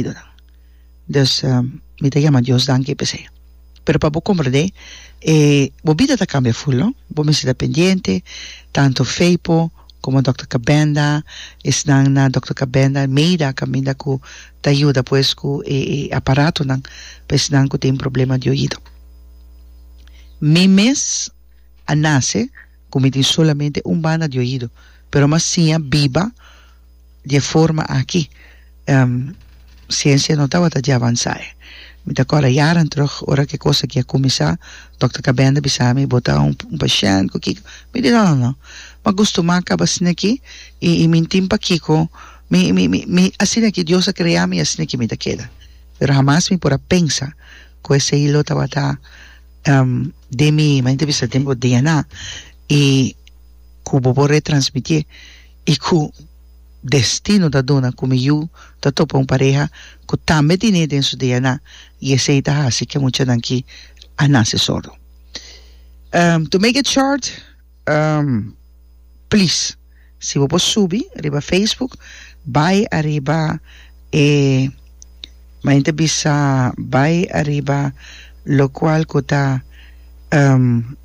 idonan dus mi ta yama Dios danki p'esei pero pa bo komprendé e bo bida ta kambia ful no bo mester ta pendiente tantu Feipo komo Dòkter Kabenda esnan na Dòkter Kabenda Meida kaminda ku ta yuda pues ku e e aparatonan pa esnan ku tin problema di oido mi mes a nase ku mi tin solamente un banda di oido pero mi a siña biba. di e forma aki siensia no tabata dje avansá e mi ta kòrda yaran terug ora ku e kos aki a kuminsá dòkter Kabenda bisa mi bo ta un pashènt ku kiko mi di no no no mi a gustumá kaba asina aki i mi tin pa kiko mi mi mi asina aki Dios a krea mi i asina aki mi ta keda pero hamas mi por a pensa ku esei lo tabata den mi manera ta bisa den bo DNA i ku bo por retransmitié. i ku destino ta duna ku mi yu ta topa un pareha ku tambe tine den su DNA i esei ta hasi ke muchanan ki a nase sordo. Um, to make it short, um, plis, si bo por subi riba Facebook, bai ariba e, mayen ta bisa, bai ariba lokual ku ta, um,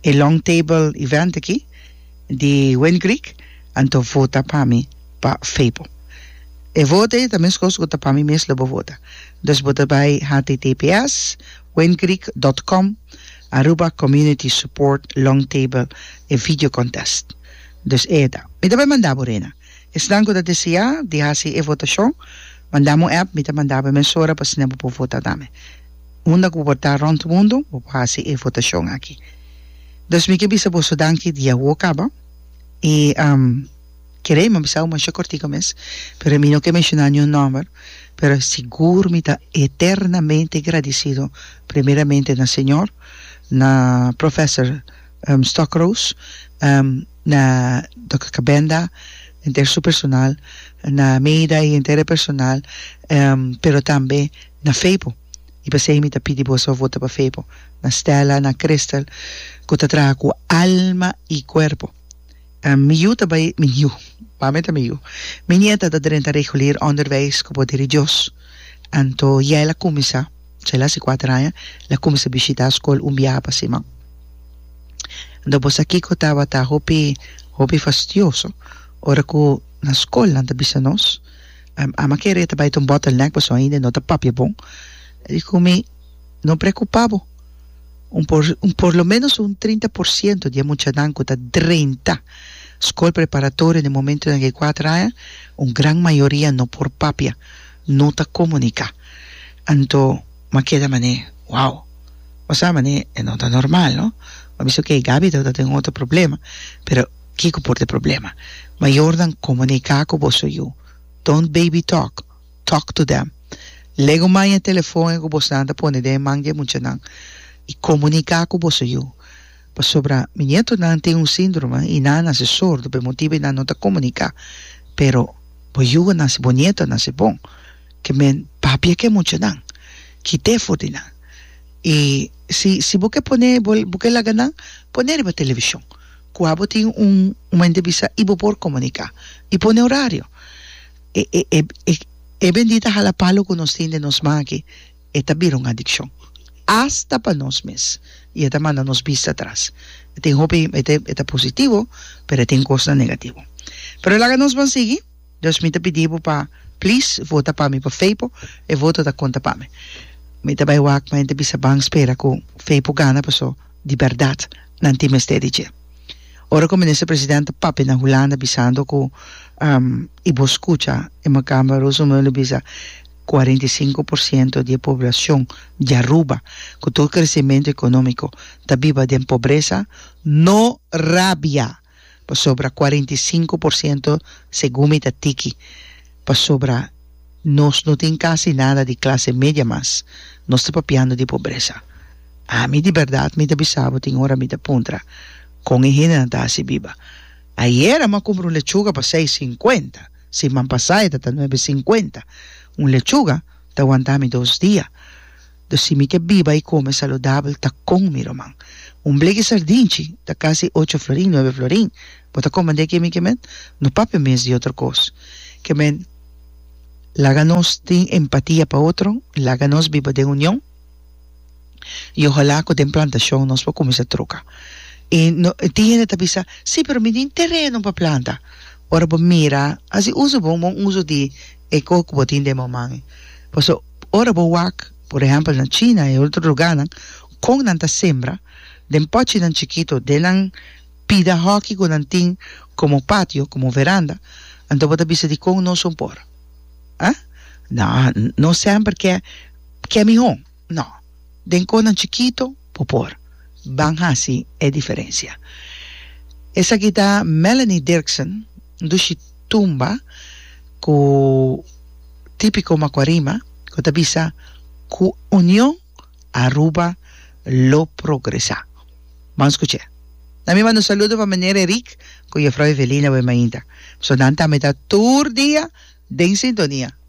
e long table event aki, di Wayne Creek anto vota pa mi pa Febo e vota e ta meskos ku ta pa mi mes lo bo vota dus bo ta bai https wayncreek dot com Aruba community support long table e video contest dus e ta mi ta bai manda bo rena esnan ku ta deseá di hasi e votashon manda mi un app mi ta manda bo e mesora pa asina bo por vota tambe unda ku bo por ta rònt mundu bo por hasi e votashon aki. Dos mi ke bisa boso danki di awo kaba i kere mi bisa bo masha kortiko mes pero mi no ke menshoná niun nòmber pero sigur mi ta eternamente gradisido primeramente na Señor na Professor Stokroos na Dokter Kabenda henter su personal na Meida i henter e personal pero tambe na Feipo. I pasei mi ta pidi boso vota pa Febo, na Stella, na Crystal cu ta traha cu alma i cuerpo. Mi yu ta bai, mi yu, mami ta mi yu, mi nieta ta drenta regulier onderwijs cu bo di Dios. Anto Yael a cuminsa, Yael a haci cuater aña, el a cuminsa bishita scol un biaha pa siman. Anto bo sa kico tabata hopi, hopi fastioso ora cu na scol nan ta bisa nos? Ama kere e ta bai ta un bottleneck pasobra ainda e no ta papia bon. E di ku mi, No preokupa bo, un por un por lo menos un trinta por siento di e muchanan ku ta drenta skol preparatorio den momentonan di e kuater aña, un gran mayoria no por papia, no ta komuniká. Anto m'a keda manera, wow, bo sa manera e no ta normal, no? M'a bisa, okay, Gaby tabata ta den un otro problema, pero. kiko por t'e problema. Mayornan komuniká ku boso yu. Don't baby talk, talk to them. Lego man e telefon e ku bosnan ta pone den e man di e muchanan i komuniká ku boso yu. Pasobra mi nietonan tin un síndrome i nan a nase sordo p'e motibu i nan no ta komuniká. Pero bo yugunan si bo nietonan si bon ke men papia ku e muchanan, kit'é for di nan i si si bo ke pone bo ke laga nan pone riba televishon. Kua bo tin un un mente bisa i bo por komuniká i pone orario. E e e e e bendita hala palo ku nos tin den nos man aki e ta bira un adikshon asta pa nos mes i e ta manda nos bista tras. E tin hopi e ta e ta positivo pero e tin kosnan negativo. Pero laga nos ban sigui dus mi ta pidi bo pa plis vota pa mi pa Feipo e voto ta konta pa mi. Mi ta bai wak mente bisa ban spera ku Feipo gana paso. di bèrdat nan tin mester di dje. Ora ku Minister Presidente papia na Hulanda bisando ku i bo skucha e Makamba Roosemuller bisa kuarenta i sinku por siento di e poblashon di Aruba ku tur kresimentu ekonómiko ta biba den pobresa no rabia. pasobra cuarenta y cinco por ciento segun mi ta tiki pasobra nos no tin casi nada di clase media mas nos ta papiando di pobresa ami di berdad mi ta bisa bo tin ora mi ta puntra con e hendenan ta haci biba ayer a ma cumpra un lechuga pa seis cincuenta siman pasaya ta ta nuebe cincuenta un lechuga ta wanta mi dos dia. Do si mi ke biba i kome saludabel ta kon mi ruman. Un bleki sardinchi ta kasi ocho florin, nuebe florin. Bo ta kome deki mi kemen? No papia mes di otro kos. Kemen, laga nos tin empatia pa otro, laga nos biba den union i ohala ku den plantashon nos por kuminsa troka. I no, tin hende ta bisa, Si, pero mi tin tereno pa planta. Ora bo mira, hasi uso bo un bon uso di e koe ku bo tin den moman e. Paso ora bo wak, por ehèmpel na China i otro lugánan, kon nan ta sembra, den pòchinan chikitu, den nan pida hòki ku nan tin komo patio, komo veranda, anto bo ta bisa di kon no son por. Aa? Nao, no sèmper ke ke mihó. No. Den konan chikito bo por. Ban hasi e diferensia. Esaki ta Melanie Dirksen, un dushi tumba ku tipiko Macuarima ku ta bisa, Ku union Aruba lo progresá. Ban skuch'é. Na mi manda un saludo pa Meneer Eric ku Jefrou Evelina Wemainda. Su nan ta mitá tur dia den sintonia.